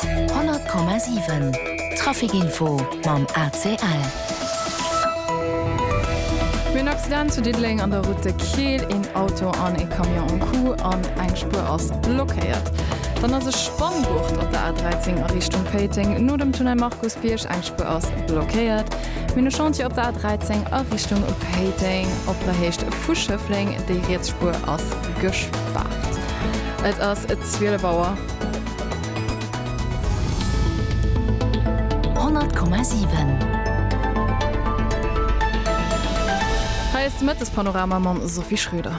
100,7 Trafic Info mam ACL. Mir hunn en Accident zu Diddeleng an der Route de Keel. Een Auto an ee Camion um Coup an eng Spuer ass blockéiert. Dann ass e Spanngurt op der A13 a Richtung Péiteng no dem Tunnel Markusbierg. Eng Spuer ass blockéiert. Mir hunn e Chantier op der A13 a Richtung Péiteng op der Héicht vu Schëffleng. Déi riets Spuer ass gespaart. Et ass 12 Auer. 100,7 Hei ass de Mëttespanorama mam Sophie Schröder.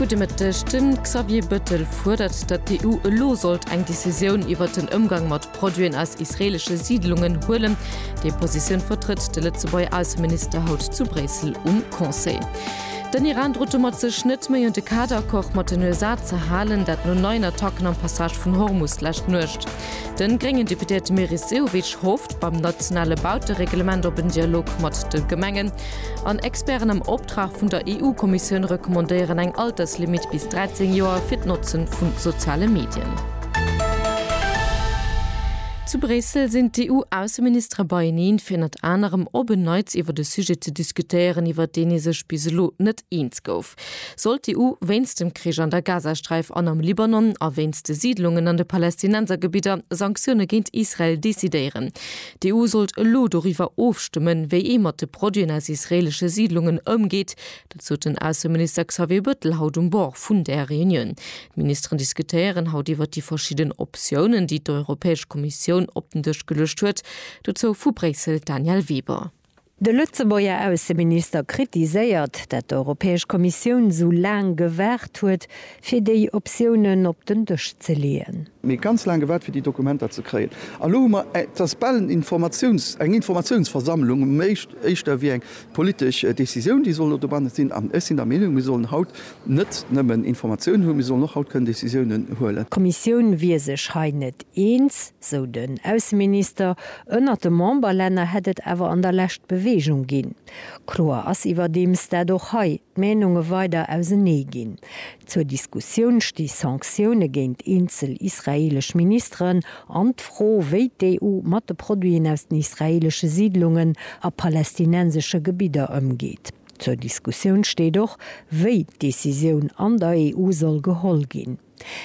Gudde Mëtteg. De Xavier Bëttel fuerdert, datt d'EU elo sollt eng Decisioun iwwert den Ëmgang mat Produiten aus israelesche Siidlungen huelen. Déi Positioun vertrëtt de Lëtzebuerger Ausseminister haut zu Bréissel um Conseil. Den Iran drot domat, sech net méi un de Kaderaccord mat den USA ze halen, dat no neien Attacken am Passage vun Hormus d'lescht Nuecht. De gréngen Deputéierte Meris Sehovic hofft beim nationale Bautereglement op en Dialog mat de Gemengen an Experten am. D'Fachaussprach vun der EU-Kommissioun recommandéieren eng Alterslimitt bis 13 Joer fir d'Notze vu soziale Medien. Zu Bréissel sinn d'EU-Ausseministere beieneen, fir ënnert anerem op en Neits iwwert e Sujet ze diskutéieren, iwwert deen ee sech bis elo net eens gouf. Soll d'EU wéinst dem Krich an der Gazasträif an am Libanon a wéinst de Siidlungen an de Palästinensergebidder Sanktioune géint Israel decidéieren? D'EU sollt elo doriwwer ofstëmmen, wéi ee mat de Produiten aus israeelesche Siidlungen ëmgeet. Dat sot den Ausseminister Xavier Bëttel haut um Bord vun där Reunioun. D'Ministeren diskutéieren haut iwwer déi verschidden Optiounen, déi d'Europäesch Kommissioun op den Dësch geluecht huet. Dozou vu Bréissel d'Danièle Weber. De Lëtzebuerger Ausseminister kritiséiert, dat d'Europäesch Kommissioun sou laang gewaart huet, fir déi Optiounen op den Dësch ze leeën. Mir hu ganz laang gewaart, fir déi Dokumenter ze kréien. An elo hu mer eng, et ass bal en Informatiouns, eng Informatiounsversammlung, am éischt, éischter ewéi eng politesch Décisioun, déi soll elo dobannen sinn. An ech sinn der Meenung, mir sollen haut net nëmmen Informatiounen hunn, mee sollen och haut kënnen Decisiounen huelen. D'Kommissioun wier sech hei net eens, sou den Ausseminister. Ënnert de Memberlänner hätt et awer an der Lescht Beweegung ginn. Kloer ass iwwerdeems, dat och hei d'Meenunge weider ausenee ginn. Zur Diskussioun sti Sanktioune géint eenzel israeelesch Ministeren an d'Fro, wéi d'EU mat de Produiten aus den israeelesche Siidlungen a palästinensesche Gebidder ëmgeet. Zur Diskussioun steet och, wéi d'Decisioun an der EU soll geholl ginn.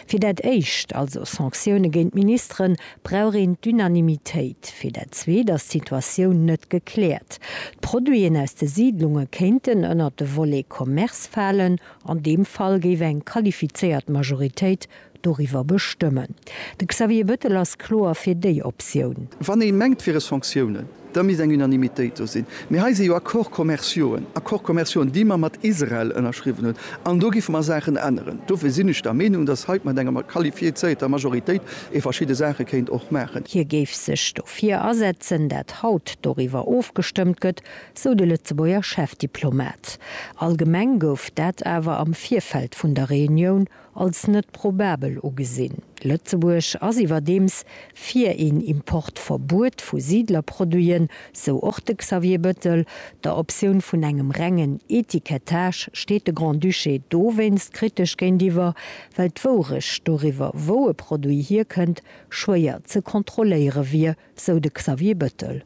Fir dat éischt, also Sanktioune géint d'Ministeren, brauch een d'Unanimitéit. Fir dat zweet ass d'Situatioun net gekläert. D'Produiten aus de Siidlunge kéinten ënnert de Volet Commerce falen. An deem Fall géif eng qualifizéiert Majoritéit Doriwwer bestëmmen. De Xavier Bettel ass kloer fir déi Optioun. Wann ee mengt, fir es Sanktiounen, da misst eng Unanimitéit do sinn. Mee hei si jo Accords commerciauxen, Accords commerciaux, déi mer mat Israel ënnerschriwwen hunn. An do giffe mer Saachen änneren. Dofir sinn ech der Meenung, dass hei mat enger qualifiézierter Majoritéit ee verschidde Saache kéint och maachen. Hie géif sech dofir asetzen, dat haut doriwwer ofgestëmmt gëtt, sou de Lëtzebuerger Chefdiplomat. Allgemeng gouf dat awer am Virfeld vun der Reunioun als net probabel ugesinn. Lëtzebuerg ass iwwerdeems fir een Importverbuet vu Siidlerproduiten, sou och de Xavier Bettel. Der Optioun vun engem rengen Etikettage steet de Grand-Duché dowéinst kritesch géintiwwer, well d'Wourecht doriwwer, wou e Produit hierkënnt, schwéier ze kontrolléiere wier, sou de Xavier Bettel.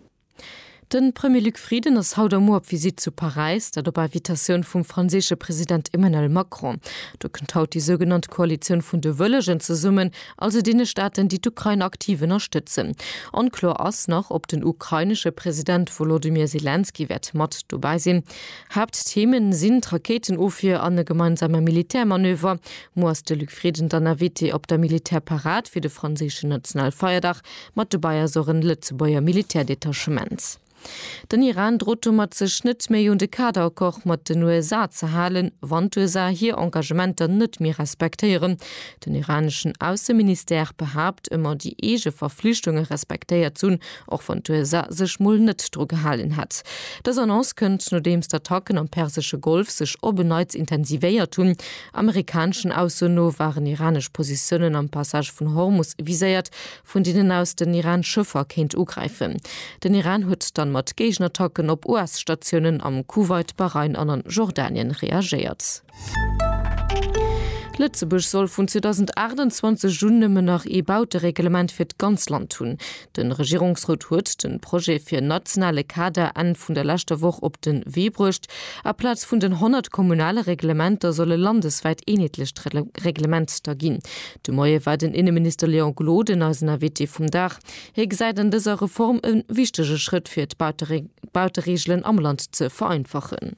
De Premier Luc Frieden ass haut a muer op Visitt zu Paräis, dat op Invitatioun vum franséische President Emmanuel Macron. Do kënnt haut déi sougenannt Koalitioun vun de Wëllegen zesummen, also deene Staaten, déi d'Ukrain aktiv ënnerstëtzen. Onkloer ass nach, ob den ukrainesche President Wolodymyr Selenskyj wäert mat dobäi sinn. Haapttheme sinn d'Rakéitenofwier an e gemeinsame Militärmanöver. Muer ass de Luc Frieden dann Invité op der Militärparad fir de franséischen Nationalfeierdag. Mat dobäi ass och en Lëtzebuerger Militärdetachement. Den Iran drot domat sech net méi un de Kaderaccord mat den USA ze halen, wann d'USA hir Engagementer net méi respektéieren. Den iraneschen Ausseministère behaapt ëmmer déi eege Verflichtunge respektéiert ze hunn, och wann d'USA sech mol net dru gehalen hätt. Dës Annonce kënnt nodeems d'Attacken am persesche Golf sech op en Neits intensivéiert hunn. Amerikaneschen Ausso no waren iranesch Positiounen am Passage vun Hormus viséiert, vun deenen aus den Iran Schëffer kéint ugräifen. Den Iran huet dann mat Géigenattacken op US-Statiounen am Kuwait, Bahrain an an Jordanien reagéiert. Lëtzebuerg soll vun 2028 un nëmmen nach ee Bautereglement fir d'ganz Land hunn. Den Regierungsrot huet den Projet fir en nationale Kader Enn vun der leschter Woch op den Wee bruecht. A Plaz vun den 100 kommunale Reglementer soll e landeswäit eenheetlecht Reglement da ginn. De Moie war den Inneminister Léon Gloden eisen Invité vum Dag. Hie gesäit an dëser Reform e wichtege Schrëtt fir d'Bauteregelen am Land ze vereinfachen.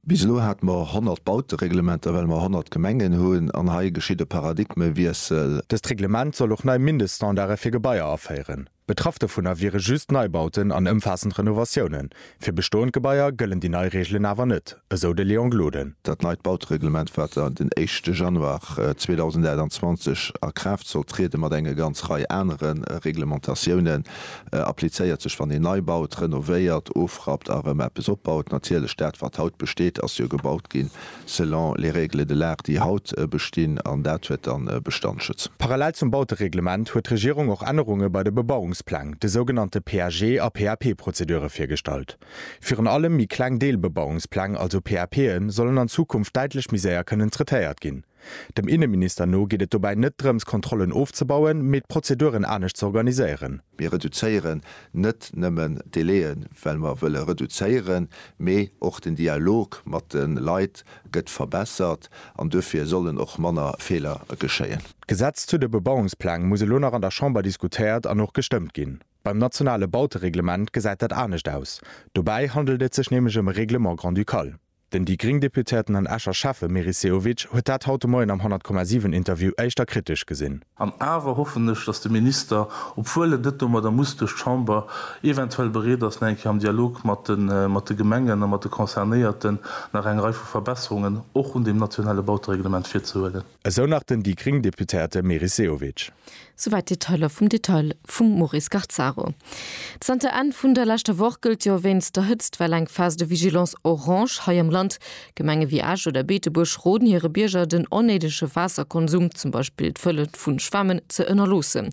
Bis elo hate mer 100 Bautereglementer, well mer 100 Gemengen hunn, an hei geschitt e Paradigmewiessel. Dëst Reglement soll och nei Mindeststandarde fir Gebaier aféieren. Betraff dovunner wiere just Neibauten an ëmfaassend Renovatiounen. Fir bestoend Gebaier gëllen déi nei Reegelen awer net, esou de Léon Gloden. Dat neit Bautereglement, wat dann den éischte Januar 2028 a Kraaft sollt trieden, mat enge ganz Rei anere Reglementatiounen, applizéiert sech, wann een nei baut, renovéiert, ofrappt a erëm eppes opbaut. Natierlech, dat wat haut besteet, ass jo gebaut ginn selon les règles de l'art, déi haut bestinn, an dat huet dann Bestandschutz. Parallel zum Bautereglement huet d'Regierung och Ännerunge bei de Bebauungspläng, de sougenannte PAG a PAP-Prozedure virgestallt. Virun allem méi kleng Deelbebauungspläng, also PAPen, sollen an Zukunft däitlech méi séier kënnen traitéiert ginn. Dem Inneminister no geet et dobäi net drëms Kontrollen ofzebauen, mee d'Prozeduren anescht ze organiséieren. Mir reduzéieren net nëmmen d'Delaien, well mer wëlle reduzéieren, mee och den Dialog mat de Leit gëtt verbessert an duerfir sollen och manner Feeler geschéien. D'Gesetz zu de Bebauungspläng muss elo nach an der Chamber diskutéiert an och gestëmmt ginn. Beim nationale Bautereglement gesäit dat anescht aus. Dobäi handelt et sech nämlech ëm e Règlement grand-ducal. Den déi gréng Deputéierten an Escher Schäffe Meris Sehovic huet dat haut de Moien am 100,7 Interview éischter kritesch gesinn. An awer hoffen ech, datt de Minister, obwuel et net domadder muss duerch d'Chamber, eventuell bereet ass, nach eng Kéier am Dialog mat de Gemengen a mat de Concernéierten nach eng Rei vu Verbesserungen och un deem nationale Bautereglement virzehuelen. Esou nach den déi gréng Deputéierte Meris Sehovic. Souwäit d'Detailer vum Detail vum Maurice Garzaro. Zanter Enn vun der leschter Woch gëllt jo wéinst der Hëtztwell eng Phase de vigilance orange hei am Land. Gemenge wéi Esch oder Beetebuerg roden hire Bierger den onnéidege Waasserkonsum, zum Beispill d'Fëlle vun Schwämmen, ze ënnerloossen.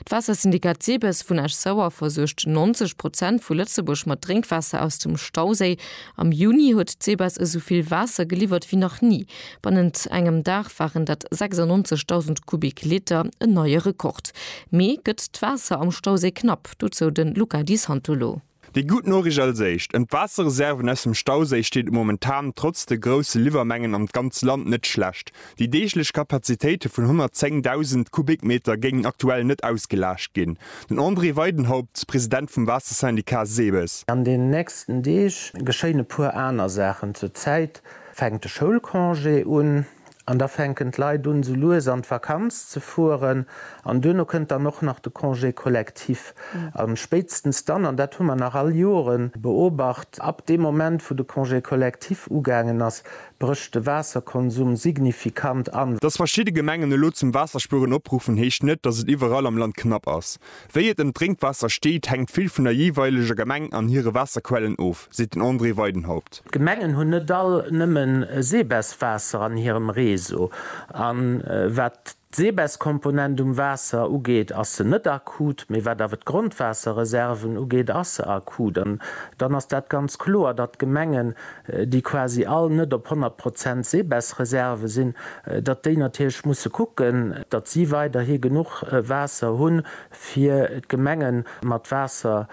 D'Waassersyndikat SEBES vun Esch-Sauer versuergt 90 Prozent vu Lëtzebuerg mat Drénkwaasser aus dem Stauséi. Am Juni huet d'SEBES esou vill Waasser geliwwert wéi nach ni. Bannent engem Dag waren dat 96.000 Kubik-Liter, en neie Rekord. Mee gëtt d'Waasser am Stauséi knapp? Dozou de Luca Di Santolo. Déi gutt Noriicht als éischt, Ëm d'Waasserreserven aus dem Stauséi steet et momentan trotz de grousse Liwwermengen an d'ganzt Land net schlecht. Déi deeglech Kapazitéite vun 110.000 Kubikmeter géingen aktuell net ausgelaascht ginn. Den André Weidenhaupt, President vum Waassersyndicat SEBES. An den nächsten Deeg geschéien e puer aner Saachen. Zur Zäit fänkt de Schoulcongé un an da fänken d'Leit un esou lues an d'Vakanz ze fueren an duerno kënnt dann och nach de Congé collectif a spéitstens dann, an dat hu mer nach all Jore beobacht, ab deem Moment wou de Congé collectif ugaangen ass, brécht de Waasserkonsum signifikant an. Dass verschidde Gemengen elo zum Waasserspueren opruffen heescht net, dass et iwwerall am Land knapp ass. Wéi et ëm d'Drénkwaasser steet, hänkt vill vun der jeeweileger Gemeng an hire Waasserquellen of, seet den André Weidenhaupt. D'Gemengen hunn net all nëmme Seebes-Waasser an hirem Réseau. A wat d'Seebes-Komponent um Waasser ugeet, ass se net akut. Mee wat awer d'Grondwaasserreserven ugeet, ass se akut. An dann ass dat ganz kloer, datt d'Gemengen déi quasi all net op 100 Prozent Seebessreserve sinn, datt déi natierlech musse kucken, datt si weiderhi genuch Waasser hunn, fir d'Gemenge mat Waasser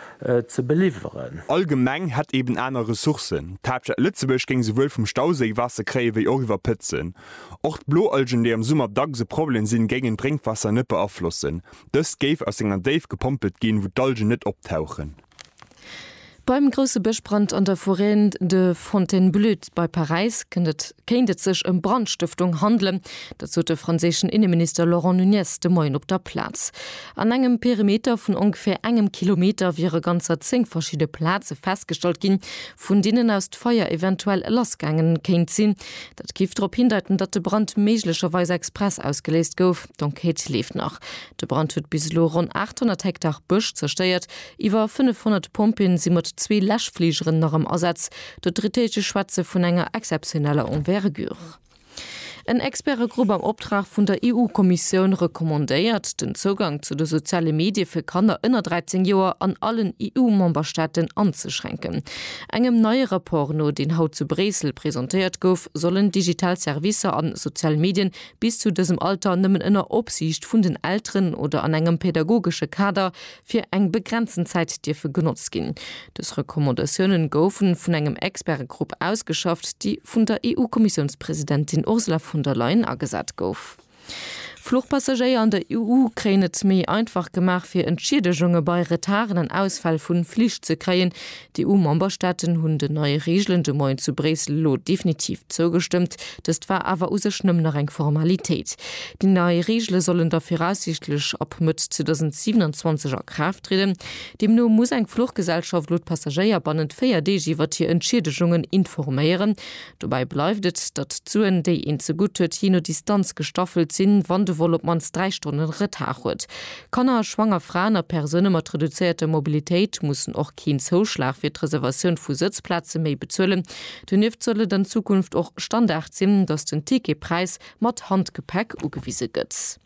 ze beliwweren. All Gemeng hätt eeben aner Ressourcen. D'Haaptstad Lëtzebuerg géing souwuel vum Stauséi Waasser kréien, wéi och iwwer Pëtzen. Och d'Bloalgen, déi am Summer dacks e Problem sinn, géingen d'Drénkwaasser net beaflossen. Dëst géif aus enger Déif gepompelt ginn, wou d'Algen net optauchen. Beim grousse Bëschbrand an der Forêt de Fontainebleau bei Paräis kënnt et kéint et sech ëm Brandstëftung handelen. Dat sot de franséischen Inneminister Laurent Nunez de Moien op der Plaz. An engem Perimeter vun ongeféier engem Kilometer wiere ganzer zéng verschidde Plaze festgestallt ginn, vun deenen aus d'Feier eventuell lassgaange kéint sinn. Dat géif drop hindeiten, datt de Brand méiglecherweis express ausgeléist gouf. D'Enquête leeft nach. De Brand huet bis elo ronn 800 Hektar Bësch zerstéiert. Iwwer 500 Pompjeeën si mat zwee Läschfligeren nach am Asaz. D'Autoritéite schwätze vun enger exzeptioneller Envergure. En Expertegrupp am Optrag vun der EU-Kommissioun recommandéiert, den Zougang zu de soziale Medie fir Kanner ënner 13 Joer an allen EU-Memberstaaten anzeschränken. Engem neie Rapport no, deen haut zu Bréissel presentéiert gouf, sollen digital Servicer a sozial Medien bis zu dësem Alter nëmmen ënner Opsiicht vun den Elteren oder an engem pädagogesche Kader, fir eng begrenzten Zäit dierfe genotzt ginn. Dës Recommandatiounen goufe vun engem Expertegrupp ausgeschafft, déi vun der EU-Kommissiounspresidentin Ursula von der Leyen agesat gouf. Fluchpassagéier an der EU kréien et méi einfach gemaach, fir Entschiedegunge bei Retarden an Ausfäll vu Flich ze kréien, D'EU-Memberstaaten hunn den neie Reegelen de Moien zu Bréissel elo definitiv zougestëmmt. Dëst war awer u sech nëmmen nach eng Formalitéit. Déi nei Reegele sollen da viraussiichtlech ab Mëtt 2027 a Kraaft trieden. Deemno muss eng Fluchgesellschaft elo d'Passagéier bannent véier Deeg iwwert hir Entschiedegungen informéieren. Dobäi bleift et, datt d'Suen, déi een zegutt huet, jee no Distanz gestaffelt sinn, wann de Vol op d'mannst dräi Stonnen Retard huet. Kanner, schwanger Fraen a Persoune mat reduzéierter Mobilitéit mussen och keen Zouschlag fir d'Reservatioun vu Sëtzplaze méi bezuelen. Donieft soll et an Zukunft och Standard sinn, datt den Ticketpräis mat Handgepäck ugewise gëtt.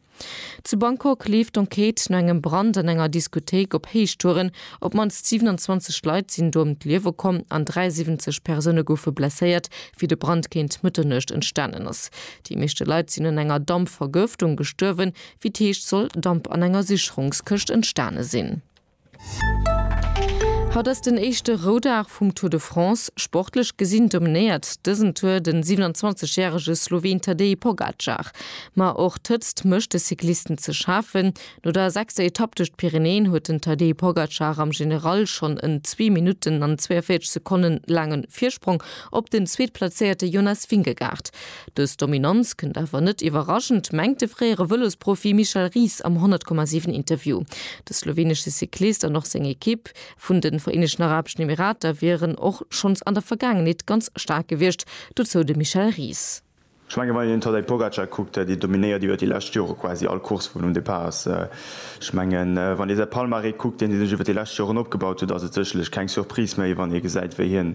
Zu Bangkok leeft d'Enquête no engem Brand an enger Diskothéik op Héichtouren. Op d'mannst 27 Leit sinn do ëm d'Liewe komm an 73 Persoune goufe blesséiert, wéi de Brand géint Mëtternuecht entstanen ass. Déi meeschte Leit sinn un enger Dampvergëftung gestuerwen, Wéi et heescht, soll Damp an enger Sicherungskëscht entstane sinn. Haut ass den éischte Roudag vum Tour de France. Sportlech gesinn dominéiert dësen Tour de 27 järege Sloween Tadej Pogacar. Ma och d'Hëtzt mécht de Cyclisten ze schafen. No der sechster Etapp duerch d'Pyrenäen huet den Tadej Pogacar am General schonn en zwee Minutten an 42 Sekonne laange Virsprong op den Zweetplazéierte Jonas Vingegaard. Dës Dominanz kënnt awer net iwwerraschend, mengt de fréiere Vëlosprofi Michel Ries am 100,7 Interview. De slowenesche Cyclist an och seng Ekipp vun de Vereenegten Arabeschen Emirater wieren och schonns an der Vergaangenheet ganz staark gewiescht, dozou de Michel Ries. Ech mengen, wann een den Tadej Pogacar kuckt, dee dominéiert iwwer déi lescht Jore quasi all Course wou en um Depart ass. Ech mengen, wann ee säi Palmarès kuckt, deen hie sech iwwer déi lescht Joren opgebaut huet, ass et sécherlech keng Surprise méi, wann ee gesäit, wéi hien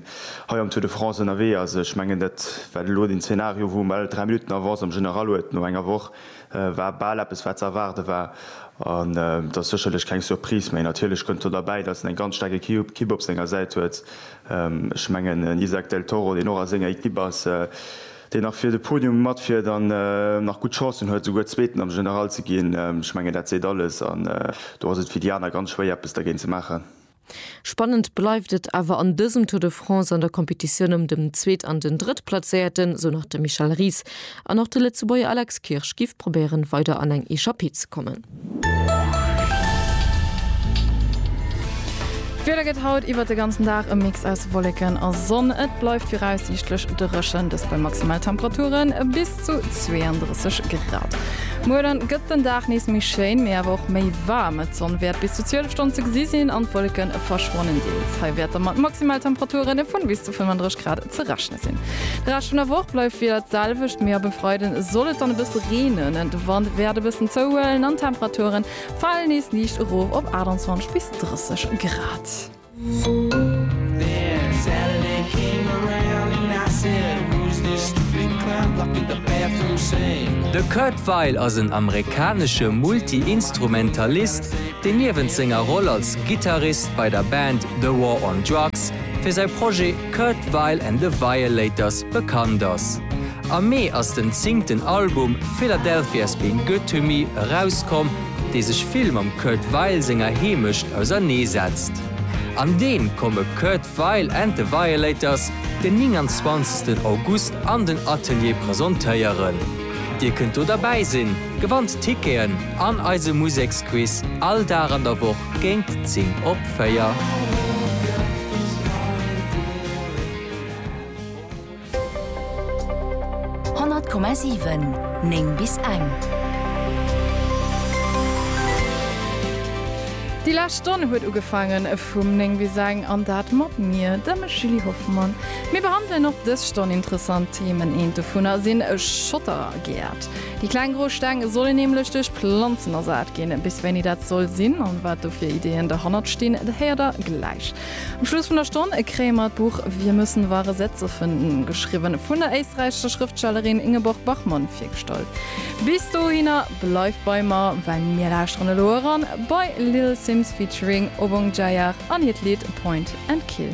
hei am Tour de France ënnerwee ass. Ech mengen, dat wat elo den Zeenario, wou en bal dräi Minutten erf ass, am General huet no enger Woch, war bal eppes, wat ze erwaarde war. An et ass sécherlech keng Surprise méi. Natierlech kënnt do derbäi, datt en eng ganz staarke Kipp op senger Säit huet. Ech mengen, en Isak del Toro, deen och a senger Ekipp ass, deen nach fir de Podium matfiert an nach gutt Chancen huet, souguer Zweeten am General ze ginn, ech mengen, dat seet alles. An do ass et fir déi aner ganz schwéier, eppes dergéint ze maachen. Spannend bleift et awer an dësem Tour de France an der Competitioun ëm dem Zweet an den Drëttplazéierten, esou nach de Michel Ries. An och de Lëtzebuerger Alex Kirsch giff probéieren, weider an eng Echappée ze kommen. D'Wieder gëtt haut iwwert de ganzen Dag e Mix aus Wolleken a Sonn. Et bleift viraussiichtlech dréchen, dëst bei maximal Temperaturen bis. Zu 32 Grad. Muer dann gëtt den Dag nees méi schéin, mee awer och méi waarm. D'Sonn wäert bis zu 12 Stonn ze gesi sinn an d'Wolleke verschwannen deels. Hei wäerte mat Maximaltemperature vun bis zu 35 Grad ze rechne sinn. De Rescht vun der Woch bleift wieder d'selwecht, mee ab e Freide soll et dann e bësse reenen. De Wand wäert e bëssen zouhuelen an d'Temperature fale nees liicht erof op 28 bis 30 Grad. De Kurt Weill ass en amerikanesche Multi-Instrumentalist, deen niewent senger Roll als Gittarist bei der Band The War on Drugs fir säi Projet Kurt Weill and the Violators bekannt ass. Am Mee ass den zéngten Album Philadelphia's Been Good to Me erauskomm, dee sech vill mam Kurt Weill senger Heemecht ausernee setzt. An deem komme Kurt Weill and the Violators den 29 August an den Atelier presentéieren. Dir kënnt do derbäi sinn, gewannt Ticketen an eise Museksquiz all Dag an der Woch géint 10 op 4. 100,7 9 bis eng. Déi lescht Stonn huet ugefaangen vum 9 bis eng an dat mat mir, dem Julie Hoffmann. Mir behandelen och dës Stonn interessant Themen. Eent dovunner sinn Schottergäert. Déi kleng gro Steng sollen nämlech duerch Planzen ersat ginn. Bis wéini dat soll sinn an wat do fir Ideeën derhannert stinn, dat héiert der gläich. Um Schluss vun der Stonn kréie mer d'Buch Wir müssen wahre Sätze finden, geschriwwen vun der éisträichescher Schrëftstellerin Ingeborg Bachmann, virgestallt. Bis dohinner bleift bei mer, well mir lauschteren elo eran bei Little Simz featuring Obong Jayar an hiert Lidd Point and Kill.